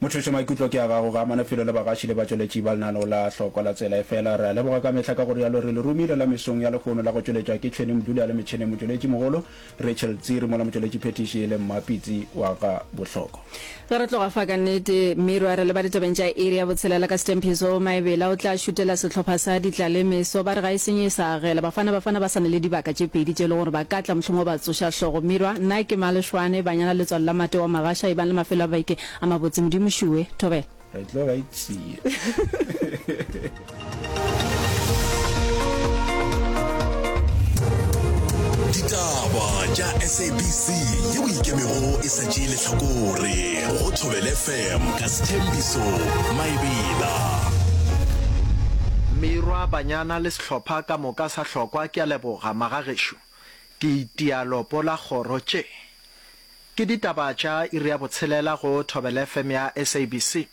Mothošo, maikutlo ke a gago. Ga a mane felo le bagaši le batšweletši ba lenaneo la Hlokwa la Tsela. Efela, re a leboga ka mehla ka go rialo re le romile la mesong ya lehono la go tšweletšwa ke Tšhweni Mduli a le metšheneng motšweletši mogolo, Rachel Tsiri mola motšweletši phethiši e le Mmapitsi wa ga Bohloko. Ge re tloga fa, ka nnete, Miro a re leba ditabeng tša iri ya botshelela ka Stempies Hall, Maebela o tla šutela sehlopha sa Ditlaleme so ba re ga e senye e sa. Gela Bafana Bafana ba sa na le dibaka tše pedi tše e le gore ba ka tla mohlomongwe ba tsoša hlogo. Mirwa, Nna ke Malešwane, Banyana Letswalo la Mate wa Magasha ebang le mafelo a beke a mabotse. Modimo šuwe. Thobela. Re tlo ba itsee. Ditaba tša SABC ye o ikemego e sa tšee lehlakore go Thobele FM ka Sethembiso Maebela. Mirwa, Banyana le hlopha ka moka sa hlokwa ke a leboga magagešo ke itia lopo la kgoro tše ke ditaba tša iri ya botshelela go thobele fm ya sabc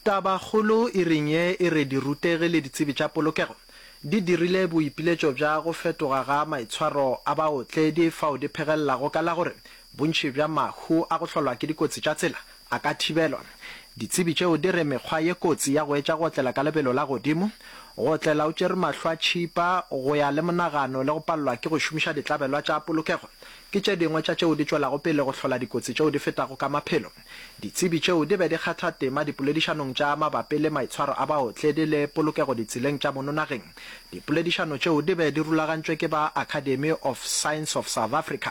taba kgolo iring ye e re dirutegi le ditsebi tša polokego di dirile boipiletšo bja go fetoga ga maitshwaro a baotledi fao di phegelelago ka la gore bontši bja mahu a go hlolwa ke dikotsi tša tsela A ka thibelwa? Ditsebi tšeo di re mekgwa ye kotsi ya go etša go otlela ka lebelo la godimo, go otlela o tšere mahlo a tšhipa, go ya le monagano le go palelwa ke go šomiša ditlabelwa tša polokego ke tše dingwe tša tšeo di tšwelago pele go hlola dikotsi tšeo di fetago ka maphelo. Ditsebi tšeo di be di kgatha tema dipoledišanong tša mabapi le maitshwaro a baotledi le polokego ditseleng tša mono nageng. Dipoledišano tšeo di be di rulagantšwe ke ba Academy of Science of South Africa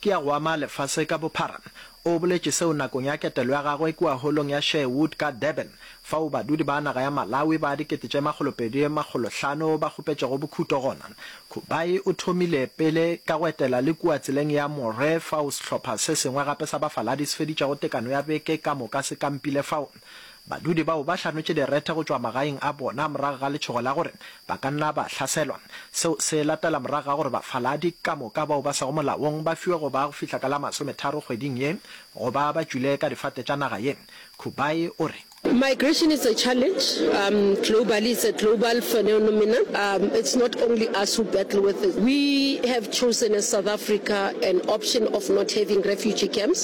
ke ya go ama lefase ka bophara. O boletše seo nakong ya ketelo ya gagwe kua Holong ya Sherwood ka Durban, fao badudi ba naga ya Malawi ba dikete tše makgolo pedi makgolo hlano ba kgopetšego bokhuto gona. Kubayi o thomile pele ka go etela le kua tseleng ya Moree fao sehlopha se sengwe gape sa bafaladi se feditšego tekano ya beke ka moka se kampile fao. Badudi bao ba hlametše direthe go tšwa magaeng a bona morago ga letšhogo la gore ba ka nna ba hlaselwa. Seo se latela morago ga gore bafaladi ka moka bao ba sego molaong ba fiwe go ba go fihla ka la masometharo kgweding ye go ba ba tšwile ka difate tša naga ye. Kubai o re. Migration is a challenge um globally, it's a global phenomenon um it's not only us who battle with it. We have chosen as South Africa an option of not having refugee camps.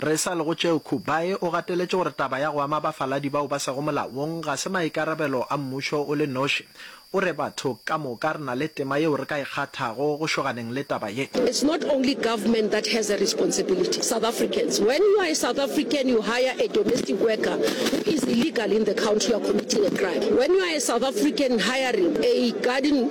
Re sa le go tšeo, Kubayi o gateletše gore taba ya go ama bafaladi bao ba sego molaong ga se maikarabelo a mmušo o le noši. O re, Batho ka moka re na le tema yeo re ka e kgathago go šoganeng le taba ye. It's not only government that has a responsibility, South Africans. When you are a South African, you hire a domestic worker who is illegal in the country, you are committing a crime. When you are a South African hiring a garden,